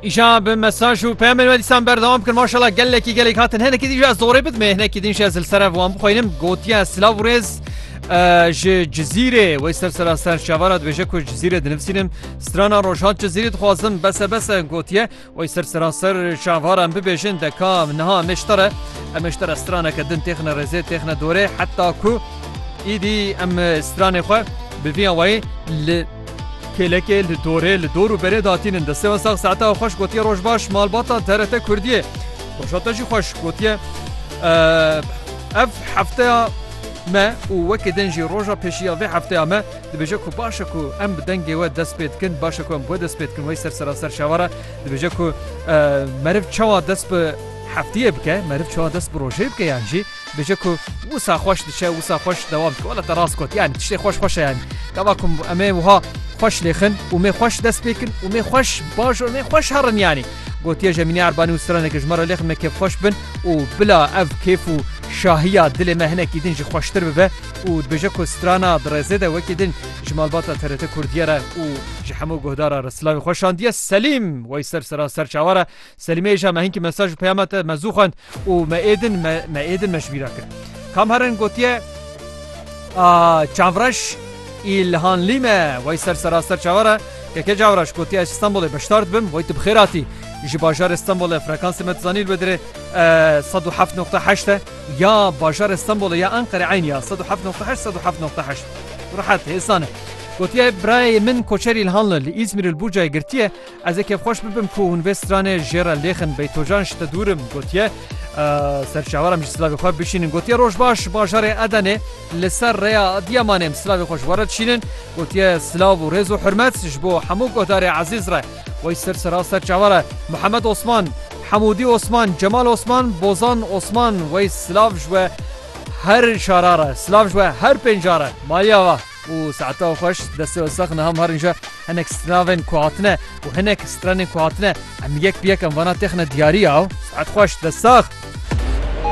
Îşan bi mesaj û peyamên we dîsan berdewam bikin maşala gelekî gelek hatin henekî dî ji ez zorê bidme hinekî din ji ez li sere wan bixwînim gotiye silav û rêz ji cizîrê wey ser sera ser şevara dibêje ku cizîrê dinivîsînim strana rojhat cizîrê dixwazim bese bese gotiye wey ser sera ser şevara em bibêjin deka niha meştere em meştere straneke din têxine rêzê têxine dorê heta ku îdî em stranê xwe bi vîya wayê li Kêlekê li dorê li dor û berê da tînin destê we sax saeta we xweş gotiye roj baş malbata TRT Kurdiyê roja te jî xweş gotiye ev hefteya me û wekî din jî roja pêşî ya vê hefteya me dibêje ku baş e ku em bi dengê we dest pê dikin baş e ku em bi we dest pê dikin wey ser seraser şewar e dibêje ku meriv çawa dest bi heftiyê bike meriv çawa dest bi rojê bike yan jî Dije ku wisa xweş diçe wisa xweş dewam dike wala te rast got yani tiştê xweş xweş e yani gava ku em ê wiha xweş lêxin û mêr xweş dest pê kin û mêr xweş baş û mêr xweş herin yani gotiye Jemînê Erbanî û straneke ji me re lêxin me kêf xweş bin û bila ev kêf û şahiya dilê me hinekî din jî xweştir bibe û dibêje ku strana di rêzê de wekî din ji malbata TRT Kurdiyê re û ji hemû guhdara re silavê xwe şandiye Selîm Weyser sera serçawa re Selîmeyê jî me hinkî mesaj û peyama te me zû xwend û me êdin me me êdin me ji bî re kir. Kamherin gotiye A Çavreş îlhanlî me wey ser seraster çawa re Keke Çavreş gotiye ez ji Stenbolê beşdar dibim wey tu bi xêr hatî. Ji bajarê Stenbolê frekansê me tu zanî li we dire sed û heft noqte heşt e ya bajarê Stenbolê ya Enqerê eynî ya sed û heft noqte heşt sed û heft noqte heşt rehet hêsan e. Gotiye birayê min koçer îlhanli li Îzmîrê li Burcayê girtiye, Ez ê kêfxweş bibim ku hûn vê stranê jê re lêxin. Beytocan ji te dûr im gotiye. Ser çawaram jî silavê xwe bişînin. Gotiye roj baş bajarê Edenê li ser rêya Adiyamanê em silavê xwe ji we re dişînin. Gotiye silav û rêz û hurmet ji bo hemû guhdarê ezîz re. Wey sir sira ser çavar e. Mihemed Osman, Hemûdî Osman, Cemal Osman, Bozan Osman. Wey silav ji we her şara re. Silav ji we her pênca re. Malî axa. û saeta xweş destê we sax niha mar nîje hinek stranavên ku hatine û hinek stranên ku hatine em yek bi yek em vana têxine diyarî yaw saet xweş dest sax.